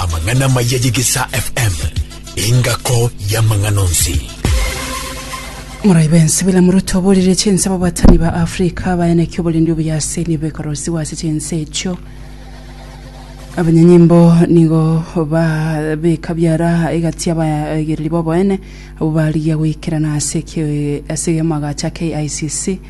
Amang'ana amaya y'egesaa FM. Engako y'amang'ana onsi. Morai bense bila muruto oborire chinse babatani ba Afrika bayaneki oborindi obuyase nibo ekorosiwa ase chinse echio abanyanyimbo nigo babeka biara egati abaegereri boboene abo barigia goikerana ase ki- ase amagacha KICC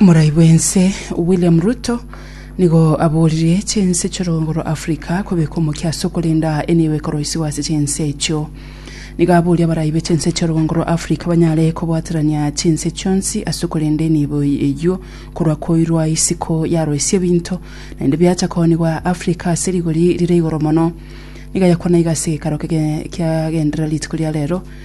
Morai bwense William Ruto nigo aboririe chinse chorongoro Africa kobeka omokia ase okorenda enibo ekoroisiwa ase chinse echio. Nigo aboria abarai be chinse chorongoro Africa banyare kobwaterania chinse chionsi ase okorenda enibo eyio korwa koirwa isiko yaroisia ebinto naende biacha koonigwa Africa ase rigori rire igoro mono. Nigo ayakwana iga ase gekaro kiagendera rituko ria rero.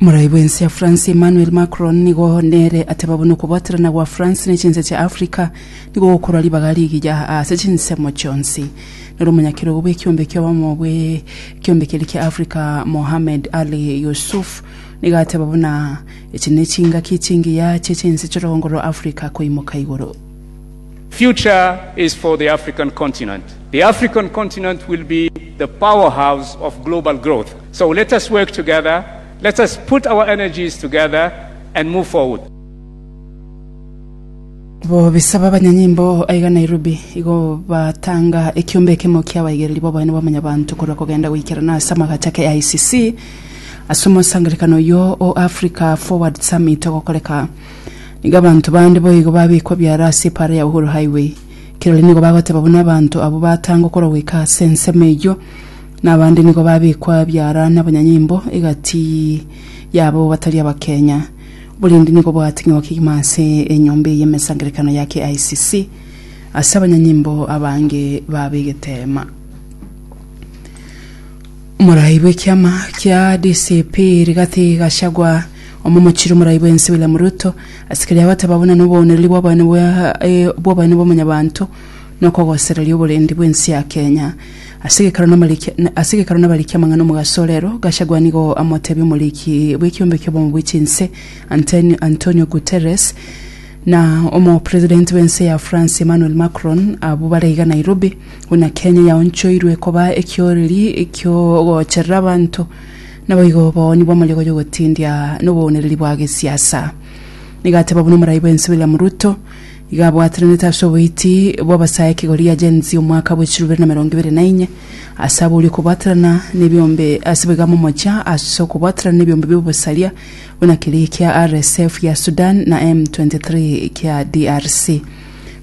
Morai bwensi ya France Emmanuel Macron nigo nere ateba buna okobaterana gwa France ne chinse chia Africa nigo gokorwa ribaga rigiya ase chinsemo chionsi. Noro omonyakerogo bw'ekiombe ki'obomo bw'ekiombe keria kia Africa Mohamed Ali Youssouf nigo ateba buna echi ne chingaki chingiya chie chinse chi'orogongo rwa Africa koimoka igoro. Future is for the African continent. The African continent will be the powerhouse of global growth. So let us work together, let us put our energies together and move forward. Bo bisaba abanyanyimbo aiga Nairobi igo batanga ekiombe ekemo kia abaigereri b'oboene bwa Mwanyabanto korwa kogenda goikerana ase amagacho ake AICC ase omosangerekano oyio o Africa Forward Summit ogokoreka. Nigo abanto bande boigo babikwa biara ase epaara ya Uhuru Highway. Kirori nigo bagoteba buna abanto abwo batanga okorwa goika ase ensemo eyio. Nabande nigo babekwa biara nabanyanyimbo egati yabo batari abakenya. Oborindi nigo bwating'igwa kegima ase enyomba eye y'emesangerekano ya KICC ase abanyanyimbo abange baba egeteema. Omorai bw'ekiama kia DCP Rigathi Gachagua omomochiri omorai bw'ense William Ruto ase keria agoteba buna noboonereri bw'obonene bwa bw'obonene bw'omonyabanto na okogosereria oborendi bw'ense ya Kenya. Ase egekaro namarikia na- ase egekaro nabarikia amang'ana omogaso o rero, Gachagua nigo amotebia omoriki bw'ekiombe ki'obomo bwe chinse Antonio, Antonio Guterres na omopresident bw'ense ya France Emmanuel Macron abwo bare iga Nairobi buna Kenya yaonchoirwe koba ekioreri ki'ogocherera abanto naboigo obowoni bw'amariogo y'ogotindia nobounereri bwa gesiasa. Nigo ateba buna omoraai bw'ense William Ruto Iga abwatranete ase oboiti bw'abasae kegori ya Gen Z omwaka bwe chilubere na merongo ibere na inye, ase abori okobwaterana nebiombe ase boiga momochia ase okobwaterana nebiombe bi'obosaria, buna keria kia RSF ya Sudan na M23 kia DRC.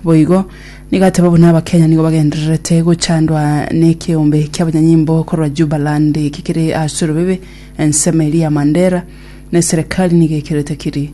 Boigo, nigo ateba buna Abakenya nigo bagendererete gochandwa nekeombe kiabanyanyimbo korwa Jubaland kekere ase orobebe, ensemo eria ya Mandera, na eserekari nigo ekerete kiri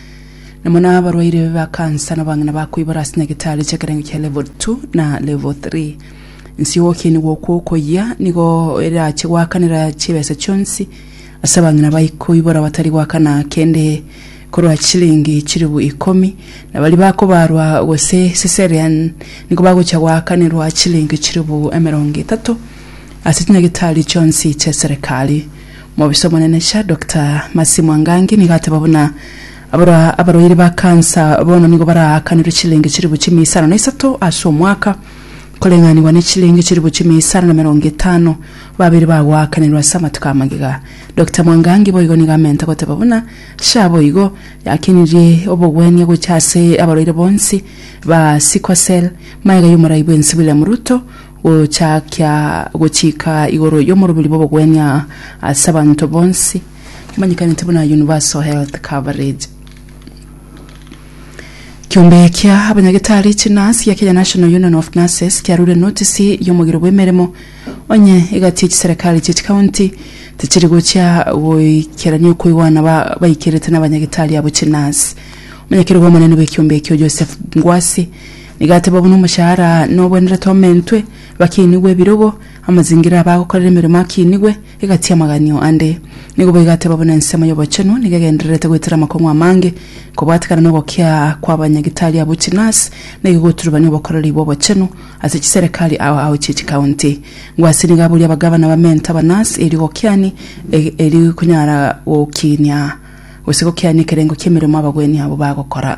Nabo nabarwaire ba kansa nabang'ina bakoibora ase nyagetari chi'ekerengo kia level 2 na level 3 nsi y'ogokeni gwokwo okoyia nigo erache gwakanera chibesa chionsi ase abang'ina baikoibora batari gwakana kende korwa chilingi chiribu ikomi na bari bakobarwa gose cesarean nigo bagocha gwakanerwa chilingi chiribu emerongo etato ase chinyagetari chionsi chia serikali Mobisa omonene cha Doctor Mercy Mwangangi nigo ateba buna abarwa abarwaire ba kansa bono nigo baraakanirwe chilenge chilifu chimia isano na isato ase omwaka koreng'anigwa ne chilenge chilifu chimia isano na merongo etano babere bagoakanirwa ase amatuko amagega. Doctor Mwangangi boigo nigo amente goteba buna sha boigo yakenirie obogwenia gocha ase abarwaire bonsi ba sickle cell maega y'omorai bwensi William Ruto Gochaakia gochika igoro y'omorobiri bw'obogwenia ase abanto bonsi, omanyekanete buna Universal Health Coverage. Kiombe kia abanyagetari chinasi ya Kenya National Union of Nurses kiarure notisi y'omogiro bw'emeremo, onye egati chiserikali chie chikaunti tichiri gochia goikerania okoigwana ba baikerete nabanyagetari abo chinasi. Omonyakerogo omonene bw'ekiombe ekio Joseph Ngwasi Igateba buna omoshahara nobwenerete omentwe, bakiinigwe ebirogo, amazingira abo agokorera emeremo akiinigwe, egatia amaganio ande. Nigo boigo ateba buna ensemo y'obochenu nigo egendererete goetera amakong'u amange, kobwatekana nogokia kw'abanyagitari abwo chinurse nigo egoturubania obokoreri bw'obochenu ase chiserekari ao ao chie chikaunti. Ngwo ase nigo aboria abagavana bamente abanurse erio gokiani erio konyara gokiinia gose gokiania ekerengo ki'emeremo abagwenia abo bagokora.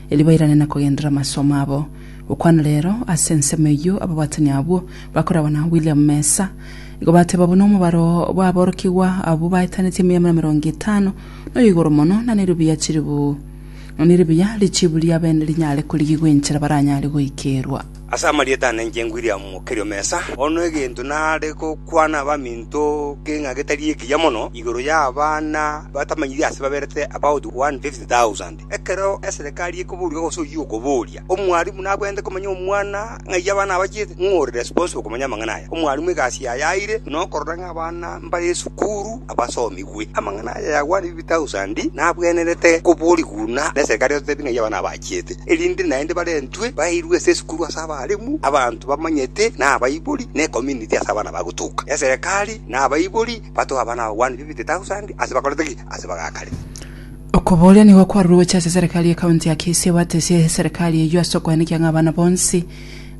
erio bairane na kogenderera amasomo abo. Gokwana reero, ase ensemo eyio ababwatani abwo bakoragwa na William Mesa igo bateba buna omobaro bw'aborokigwa abwo baetanetie emeamera emerongo etano noyo igoro mono, na neribuya chiribu na neribuya richiibu ria bene rinyare korigigwa enchera baranyare goikerwa. Ase amarieta ane inche William Mokerio Mesa, bono egento nare gokwana abaminto ke ng'a getari ekiya mono igoro y'abana batamanyiri ase baberete about 150,000. Ekero eserekari ekoboria gose oyio okoboria, omwarimu nabwenerete komanya omwana ng'ai abana abachiete, ng'o ore responsible komanya amang'ana aya? Omwarimu egasi yaye aeire nokorora ng'a abana mbare esukuru abasomigwe. Amang'ana aya yagwanire bi thousand nabwenerete koboria buna neserekari egotebia ng'ai abana abachiete, erinde naende barentwe bairwe ase esukuru ase abarimu, abanto bamanyete na abaibori na ecommunity ase abana bagotuka. Eserekari na abaibori batoe abana abagwanire bi thousand ase bakorete ki? Ase bagakare. Okobooria nigo kwarure gocha ase eserekari ye county ya Kisii ebatesie eserekari eyio ase okoenekia ng'a abana bonsi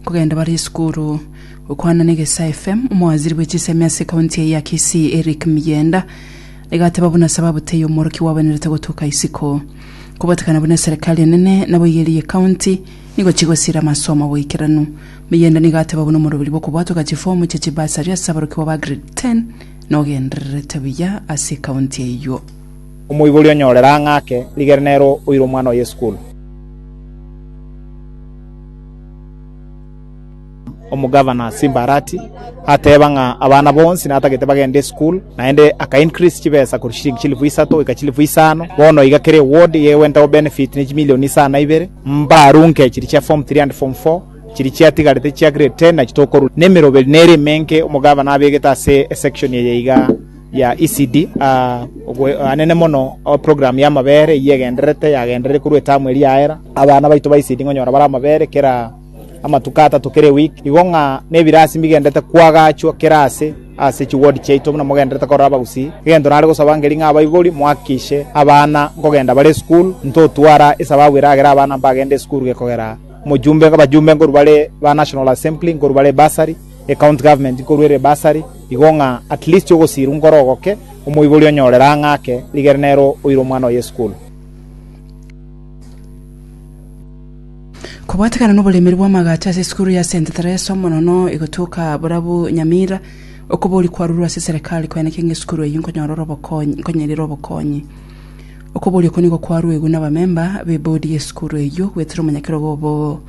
nkogenda bare esukuru. Gokwana na Egesaa FM, omowaziri bwe chisemi ase county eye ya Kisii Eric Miyenda nigo ateba buna sababu teiyo omworokigwa obenerete gotuka isiko. Kobatekana buna eserekari enene naboigo eria ye county nigo chigosira amasomo agoikeranu. Miyenda nigo ateba buna omoroberi bw'okobwatwa ga chifomu chia chibursary ase aborokigwa ba grade 10 nogendererete buya ase ecounty eyio. Omoibori onyorere ang'e ake, rigere nere oire omwana oye isukuru. Omogavana Simbarati ateeba ng'a abana bonsi natagete bagende isukuru, naende aka increase chibesa korwa chiliingi chilifu isato goika chilifu isano. Bono iga kera eward iga egwentagwa benefit ne chimilioni isa na ibere, mbarunke chiria chia form three and form four, chiria chiatigarete chia grade ten nachi tokorunka. Nemeroberi nere emenke omogavana abegete ase esection eye igaa. ya ECD. Oboanene mono program y'amabere eyio egendererete, yagenderire korwa etamu eria yaera. Abana baito ba ECD nkonyora bare amabere kera amatuko atato kera eweek, igo ng'a nebirasi mbigendererete koagachwa kera aase ase chiward chiaito buna mogendererete korora abagusii. Egento nare gosaba nkeri ng'a abaibori mohakikishe abana nkogenda bare esukuru, ntotwara esababu eragere abana mbagende esukuru gekogera omojumbe, abajumbe nkorwa bare ba National Assembly, nkorwa bare bursary. Ecounty government korwa ere bursary igo ng'a at least ogosiirwa nkore ogoke omoibori onyorere ang'e ake rigere nero oire omwana oye esukuru. Kobwatekana noboremeri bw'amagacho ase esukuru ya Saint Theresa omonono egotuoka borabu Nyamira, okobori kwarurwe ase serekari koeneke ng'a esukuru eyio nkonyora ore obokonyi nkonyerire obokonyi. Okobori oko nigo kwarwegwe nabamemba b'ebodi y'esukuru eyio goetera omonyakerogo obo.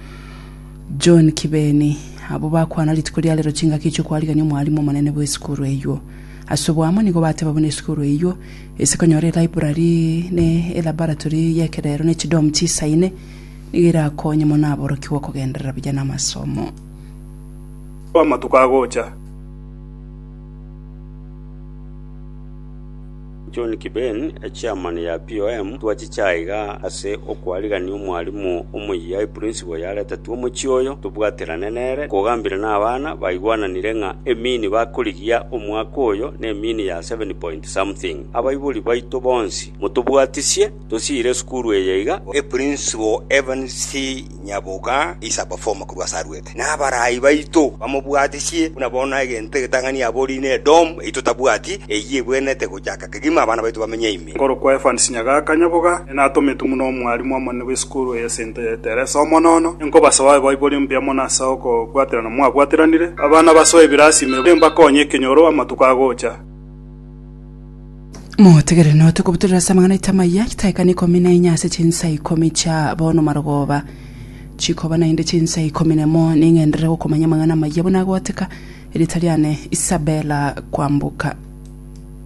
John Kibeni, Abwo bakwana rituko ria rero chingaki chi'okwarigania omwalimu omonene bw'esukuru eyio. Ase oboamo nigo bateba buna esukuru eyio ase konyora elibrary ne elaboratory y'ekerero ne chidom chisaine nigo erakonye mono aborokigwa okogenderera buya namasomo. Amatuko agocha. John Kiben, echairman ya POM, Twachiche aiga ase okwarigania omwarimu omoyia eprinciple yaretetwe omochie oyo, tobwaterane nere, kogambire nabana baigwananire ng'a emini bakorigia omwaka oyo nemini ya seven point something. Abaibori baito bonsi motobwatisie, tosiire esukuru eye iga. Eprinciple Evans C. Nyaboka is a performer korwa ase arwete, na abaraai baito bamobwatisie buna bono egento egetang'ani abori ne Edom eyio totabwati, eyio ebwenerete gochaka kegima abana baito bamenye ime. Nkorokwa Evans Nyagaka Nyaboga, nere natometwe buna omwalimu omonene bw'esukuru eye ase ento ya Teresa Omonono. Ninkobasabe abe baibori mbuya mono ase okobwaterana mwabwateranire. Abana basoe ebirasi ime, mbakonye ekenyoro amatuko agocha. Motegerere note kobutorera ase amang'ana aito amaya chitaekane ikomi na enye ase chinsa ikomi chia bono marogoba chikoba naende chinsa ikomi nemo ning'enderere gokomanya amang'ana amaya buna agoteka erita riane Isabella Kwambuka.